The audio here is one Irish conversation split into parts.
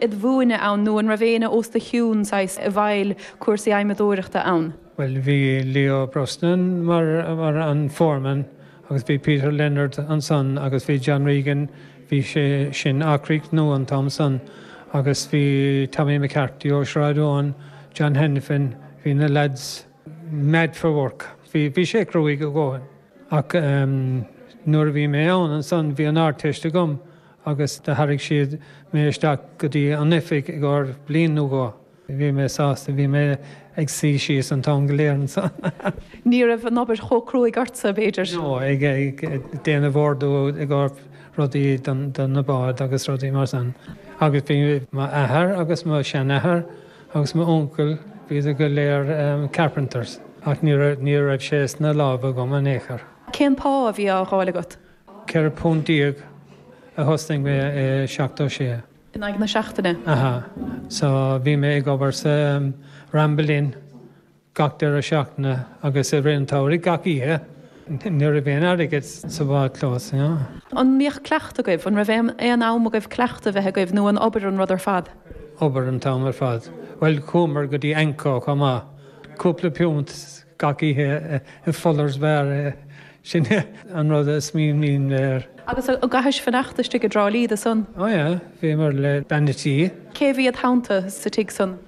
ad mhúineadh ann nó an raibh éinne os do chionn saghas, i bhfeighil cúrsaí adhmadóireachta ann? Bhuel, bhí Leo Brosnan mar, mar, an foreman agus bhí Peter Leonard ansan agus bhí John Regan, bhí sé sin ag críochnú an t-am san agus bhí Tommy McCarthy ó Shráid Eoin, John Hanafin, bhí na lads mad for work, bhí, bhí sé cruaigh a dhóthain. Ach ehm nuair a bhí mé ann ansan bhí an Ardteist agam Agus do tharraig siad mé isteach go dtí an oifig i gcóir bliain nó dhó. Bhí mé sásta. Bhí mé ag suí síos an t-am go léir ansan. Ní raibh an obair chomh cruaidh ortsa, b'fhéidir? No, ag déanamh ordú i gcóir rudaí do na báid agus rudaí mar san. Agus bhí m'athair agus mo sheanathair agus m'uncail, bhíodar go léir carpenters. Ach ní raibh sé sna lámha agam in aon chor. Cén pá a bhí á fháil agat? £14 nuair a thosnaigh mé i 76. In aghaidh na seachtaine? Aha. So, bhí mé ag obair sa Ramble Inn gach deireadh seachtaine agus i rith an tsamhraidh gach oíche. Ní raibh aon airgead sa bhádchlós, you know. An mbíodh cleachtadh agaibh? An raibh aon, aon am agaibh cleachtadh a bheith agaibh nó an obair an rud ar fad? Obair an t-am ar fad. Bhuel, chuamar go dtí AnCO chomh maith. Cúpla piúnt. Gach oíche i Fuller's Bar, sin é an rud a smaoiním air. Agus an gcaithis fanacht istigh i dTrá Lí dó san? Ó yeah, bhíomar le bean an tí. Cé a bhí id theannta sa tigh san?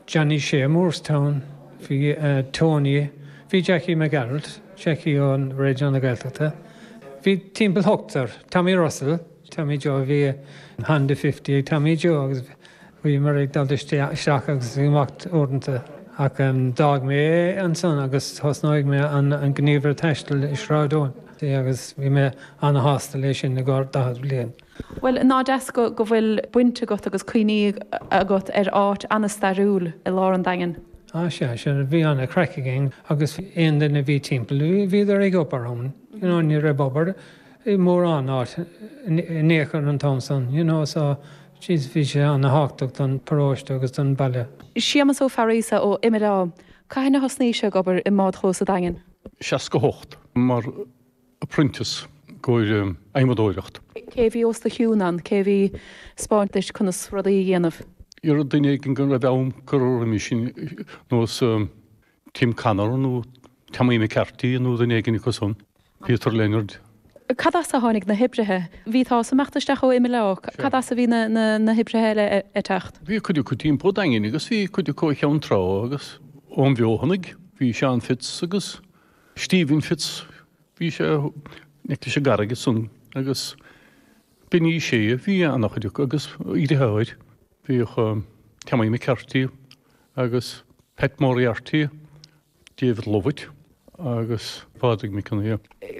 Johnny Shea Moorestown, bhí Tony, bhí Jackie Mac Gearailt, Jackie ó Raidió na Gaeltachta, bhí timpeall hochtar, Tommy Russell, Tommy Joe, bhí Honda Fifty ag Tommy Joe agus Bhíomar ag dul isteach agus amach uaireanta ach d'fhág mé é ansan agus thosnaigh mé an gníomhaire taistil i Sráid Eoin agus bhí mé ana-shásta leis sin i gcomhair daichead bliain. Bhuel, nach deas go bhfuil baint agat agus cuimhní agat ar áit ana-stairiúil i lár an Daingin? Á sea, sin, bhí ana-chraic againn agus aon duine a bhí timpeall, bhíodar ag obair ann, you know, ní raibh obair i mórán áit in aon chor an t-am san, you know, so Sea bhí sé ana-thábhachtach don paróiste agus don baile. Séamus Ó Fearghusa ó Imileá. Cathain a thosnaís-se ag obair i mbádchlós an Daingin? 68, mar apprentice, i gcomhair adhmadóireacht. Cé a bhí os do chionn ann? Cé a bhí ag spáint duit conas rudaí a dhéanamh? Éara duine éigin go raibh am curtha roimis sin nós. Tim Connor nó Tommy McCarty nó duine éigin acu san, Peter Leonard. Cad as a tháinig na hoibrithe? Bhí, tá, as imeacht isteach ó Imileá. Cad as a bhí na, na, na hoibrithe eile ag teacht? Bhí cuid acu timpeall an Daingin agus bhí cuid acu ó Cheann Trá agus ón bhFeothanaigh. Bhí Seán Fitz agus Stephen Fitz, bhí sé in aice leis an gCarraig san agus Benny Shea, bhí ana-chuid acu agus iarrathóir. Bhíodh Tommy McCarty agus Pat Moriarty, David Lovett agus Pádraig McKenna.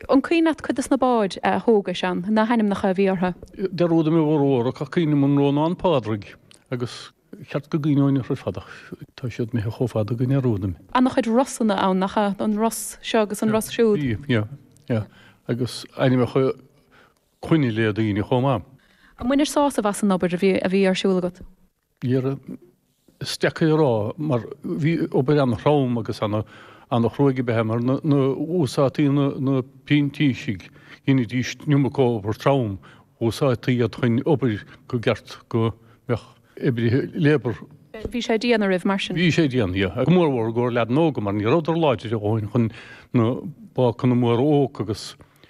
An cuimhin leat cuid dos na báid a thógais ann, na h-ainmneacha a bhí ortha? Dearúdaim a bhformhór ach cuimhním an Rónán Pádraig agus cheart go gcuimhneoinn ortha ar fad ach tá siad imithe chomh fada go ndearúdaim. Ana chuid Rosanna ann, nach eadh? An Ros seo agus an Ros siúd. Bhí, yeah, yeah. Agus ainmneacha clainne daoine chomh maith. An mbainteá sásamh as an obair a bhí ar siúl agat? N'fheadar, is deacair a rá, mar bhí obair an-throm agus an-chruaidh ab ea é, mar nuair a úsáidtí na printísigh, dheinidís an iomarca obair trom, úsáidtí iad chun obair gur cheart go mbeadh oibrithe labour. Bhí sé dian oraibh, mar sin. Bhí sé dian, yeah. Go mór mhór i gcomhair leaideanna óga, mar ní rabhadar láidir a dhóthain chun na bácanna móra a thógaint agus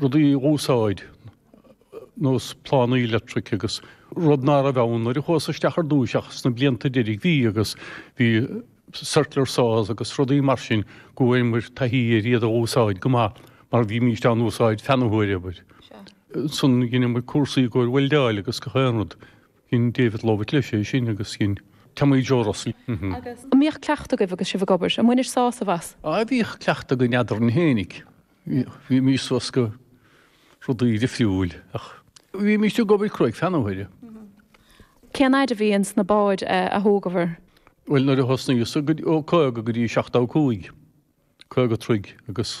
rudaí a úsáid, ar nós plánaí electric agus rud ná raibh ann nuair a chuas isteach ar dtúis ach sna blianta deiridh bhí agus bhí circular saws agus rudaí mar sin go bhfuaireamar taithí ar iad a úsáid go maith mar bhímíst á n-úsáid feadh na huaire abair. Ansan dheineamar cúrsaí i gcomhair weldáil agus gach aon rud. Dhein David Lovett leis é sin agus dhein Tommy Joe Russell. An mbíodh cuileachta agaibh agus sibh ag obair? An mbainteá sásamh as? Á bhíodh cuileachta againn eadrainn féinig. Bhímís bhosca rudaí difriúil ach bhímís ag obair cruaidh feadh na huaire. Cén fhaid a bhí ins na báid a thógabhair? Bhuel, nuair a thosnaíos, ó 50 go dtí 75, 50 troigh, agus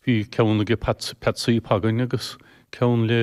bhí ceann ag Peatsaí Pagain agus ceann le.